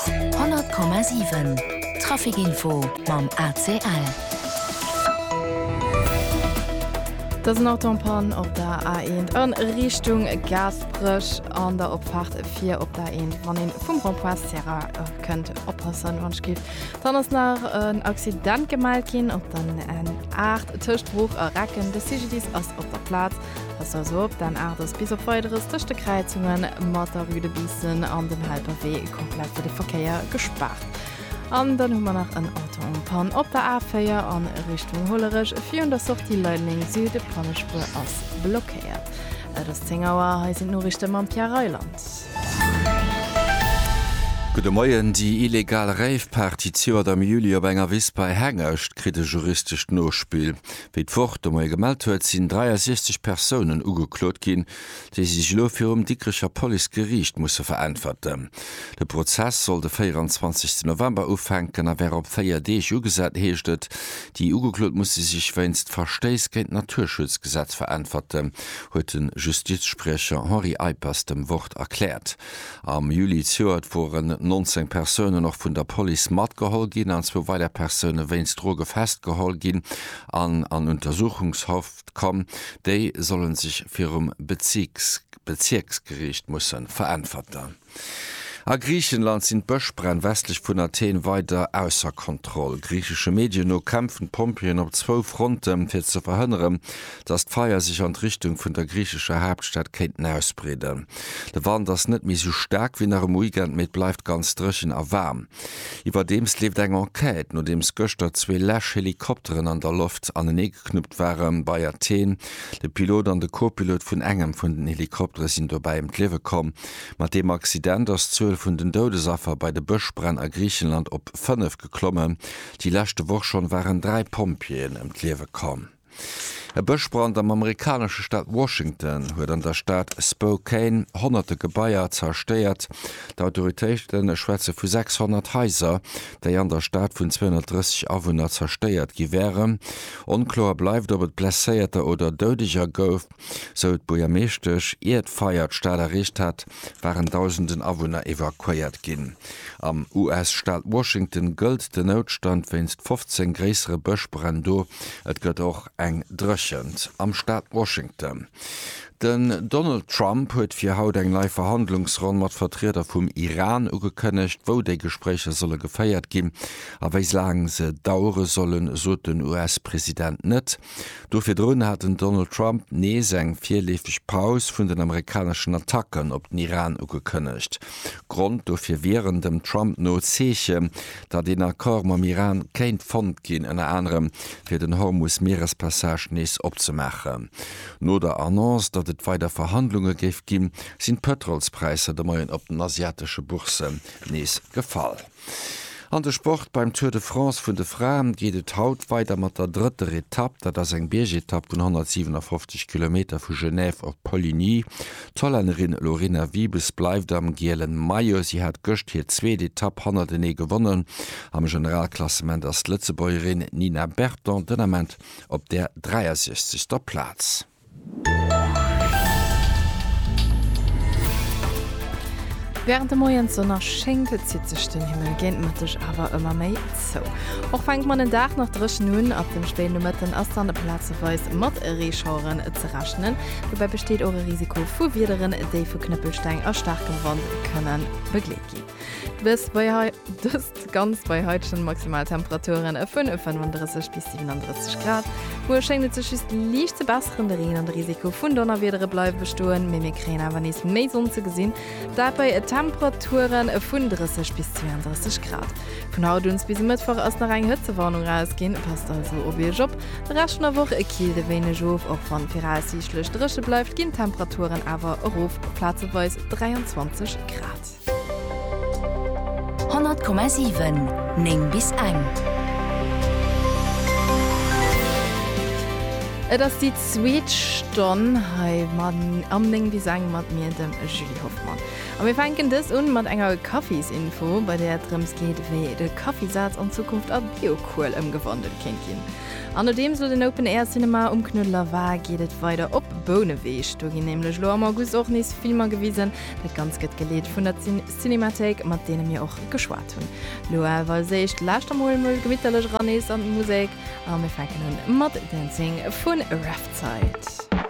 100,7 Trafic Info mam ACL. Dat ass en Autopann op der A1 a Richtung Gaasperech an der Opfaart fir op der A1. Wann ee vum Rond-point Sierra kënnt, oppassen, wann ech giff. Dann ass nach en Accident gemellt ginn op der N8 tëscht Bruch a Recken. De CGDIS ass op der Plaz. Pass also op dän Aart ass bis op Weideres tëscht de Kräizungen mat der Rue de Biissen an dem Helperwee komplett fir de Verkéier gespaart. An dann hu mer nach en Auto en panne op der A4 a Richtung Hollerech. Virun der Sortie Leideleng Süd, Pannespuer ass blockéiert. Et ass 10 Auer, hei sinn d'Noriichte mam Pierre Reyland. Gudde Moien, Déi illegal Rave-Party d'Joert am Juli op enger Wiss bei Hengescht kritt e juristescht Nospill. Wéi d'Wort de Moie gemellt huet, sinn 63 Persounen ugeklot ginn, déi sech elo virum Dikrecher Policegeriicht musse veräntwerten. De Prozess soll de 24 November ufänken a wär op véier Deeg ugesat, heescht et. Déi Ugeklot musse sech wéinst Verstéiss géint d'Naturschutzgesetz veräntwerten, huet de Justizspriecher Henri Eippers dem Wort erkläert. Am Juli zejoert woren 19 Persounen och vun der Police matgeholl ginn an zwou weider Persoune wéinst Droge festgeholl ginn an an Untersuchungshaft komm. Déi solle sech virum Bezierksgeriicht musse veräntwerten. A Griichenland sinn d'Bëschbränn westlech vun Athen weider ausser Kontroll. Griichesche Medien no kämpfen d'Pompjeeën op zwou Fronten, fir ze verhënneren, dass d'Feier sech an d'Richtung vun der griichescher Haaptstad kéinten ausbreeden. De Wand ass net méi esou staark wéi nach um Weekend, mee et bleift ganz dréchen a waarm. Iwwerdeems leeft eng Enquête, nodeems gëschter zwee läsch Helikopteren an der Loft aneneegeknuppt waren bei Athen. De Pilot an de Co-Pilot vun engem vun den Helikoptere sinn dobäi ëm d'Liewe komm. Mat deem Accident ass d'Zuel vun den Doudesaffer bei de Bëschbränn a Griichenland op fënnef geklommen. Déi leschte Woch schonn waren dräi Pompjeeën ëm d'Liewe komm. E Bëschbrand am amerikanesche Staat Washington huet an der Stad Spokane honnerte Gebaier zerstéiert. D'Autoritéite schwätze vu 600 Haiser, déi an der Stad vun 230 Awunner zerstéiert gi wären. Onkloer bleift, ob et Blesséierter oder Doudeger gouf. sou d'Buergermeeschtesch. Ier d'Feier d'Stad erreecht hat, waren Dausenden Awunner evakuéiert ginn. Am US-Staat Washington gëllt den Noutstand wéinst 15 gréissere Bëschbränn do. Et gëtt och eng Dréchent am Staat Washington. Den Donald Trump huet fir haut eng nei Verhandlungsronn mat Vertrieder vum Iran ugekënnegt. Wou déi Gespréicher solle geféiert ginn a wéi laang se dauere sollen, sot den US-President net. Do virdrun hat den Donald Trump nees eng virleefeg Paus vun den amerikaneschen Attacken op den Iran ugekënnegt. Grond dofir wieren dem Trump no Zeechen, datt een Accord mam Iran kéint fonnt ginn, ënner anerem fir den Hormus-Mierespassage nees opzemaachen. No der Annonce, datt et weider Verhandlunge géif ginn, sinn d'Pëtrolspräisser de Moien op den asiatesche Bourssen nees gefall. An de Sport, Beim Tour de France vun de Fraen geet et haut weider mat der drëtter Etapp. Dat ass eng Biergetapp vun 157 Kilometer vu Genève op Poligny. D'Hollännerin Lorena Wiebes bleift am gielen Maillot. Si hat gëscht hir zweet Etapp hannertenee gewonnen. Am Generalklassement ass d'Lëtzebuergerin Nina Berton den Ament op der 63. Plaz. Wärend de Moiessonner schéngt, zitt sech den Himmel géint Mëtteg awer ëmmer méi zou. Och fänkt man den Dag nach dréchen un, ab dem Spéinomëtten ass dann plazeweis mat Reeschaueren ze rechnen. Dobäi besteet och e Risiko vu Wiederen, déi vu Knëppelsteng a staarkem Wand kënne begleet ginn. Dëst bei hei, dëst ganz bei heitegen Maximaltemperaturen e vun e 35 bis 37 Grad. Muer schéngt et sech just liicht ze besseren, de Reen an de Risiko vun Donnerwiedere bleiwe bestoen, mee mir kréien awer nees méi Sonn ze gesinn, dat bei e Temperaturen e vun 30 bis 32 Grad. Vun haut un bis e Mëttwoch ass nach eng Hëtzewarnung erausginn, passt also op iech op. De Rescht vun der Woch kilt e wéineg of, och wann viraussiichtlech dréche bleift, ginn d'Temperaturen awer erof op plazeweis 23 Grad. 100,7 9 bis eng. Et ass déi zweet Stonn hei am 9 bis eng mat mir, dem Julie Hoffmann. A mir fänken dës un mat enger Kaffisinfo, bei där et drëms geet, wéi de Kaffisaz an Zukunft a Biokuel ëmgewandelt kéint ginn. An nodeems elo den Open Air Cinema um Knuedler war, geet et weider op Bouneweg. Do ginn nämlech elo am August och nees Filmer gewisen, Dat Ganzt gëtt geleet vun der Cinémathéik, mat deene mir och geschwat hunn. Lo awer als éischt lauschter mol mol gemitterlech eran nees an d'Musek a mir fänken un mat Dancing vun Riptide.